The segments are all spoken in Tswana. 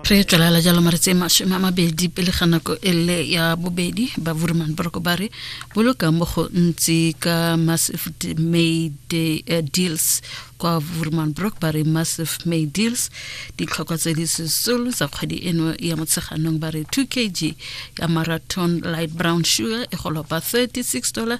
re tswelela jalo maretsi e masome a mabedi pele ga nako e le ya bobedi ba vurman boroko ba re boloka mo go ntsi ka massive may eh, deals kwa vurman brook ba re massive may deals ditlhokwa tse di sesolo tsa kgwedi eno ya motsheganong ba re 2 kg ya marathon light brown sugar e golopa 36 dollar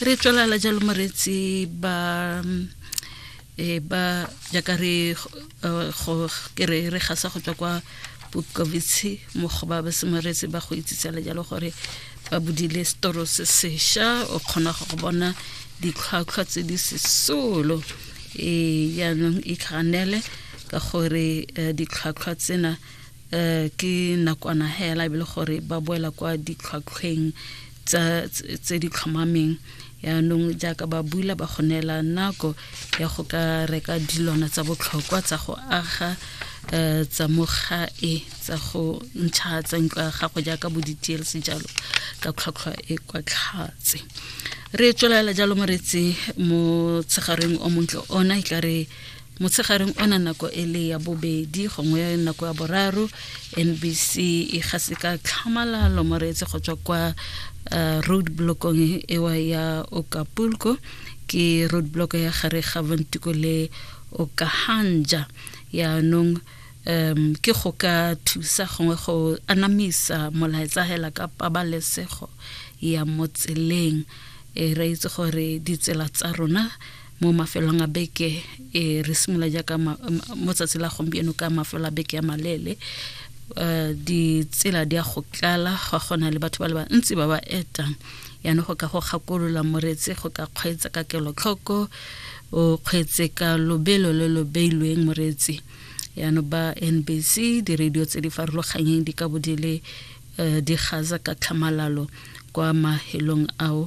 re tswelala jalo moretsi ba e ba jaaka re go ke re re gasa go tswa kwa bokovitshe mo go ba ba semoretsi ba go itsitsela jalo gore ba bodile setoro se sesha o kgona go bona ditlhwatlhwa tse di sesolo e jaanong e tlhanele ka gore eh, ditlhwatlhwa tsena eh, ke nakwana hela e le gore ba boela kwa ditlhwatlhweng tsa tse di tlhomameng yaanong jaaka ba bula ba go neela nako ya go ka reka dilwana tsa botlhokwa tsa go aga um tsa mo gae tsa go ntšha tsa ntlo ya gago jaaka bo di-tlc jalo ka tlhwatlhwa e kwa tlhatse re tswelela jalo moretsi mo tshegareng o montle ona e tla re motshegareng ona nako e le ya bobedi gongwe nako ya boraro nbc e gase ka tlhamalalo moreetse go tswa kwa uh, road blockong ewa ya okapulko ke road block ya gare ga bontiko le okahanja yaanong um ke go ka thusa gongwe go anamisa molaetsa hela ka pabalesego ya motseleng e re itse gore ditsela tsa rona mo mafelong a beke e re simolola jaaka mo tsatsi la gompieno ka mafelo a beke ya maleele um ditsela di ya go tlala ga gona le batho ba le bantsi ba ba etang yana go ka go gakolola moreetsi go ka kgweetsa ka kelotlhoko o kgweetse ka lobelo le lo beilweng moreetsi yana ba nbc di-radio tse di farologanyeng di ka bo di le um di gaza ka tlhamalalo kwa mahelong ao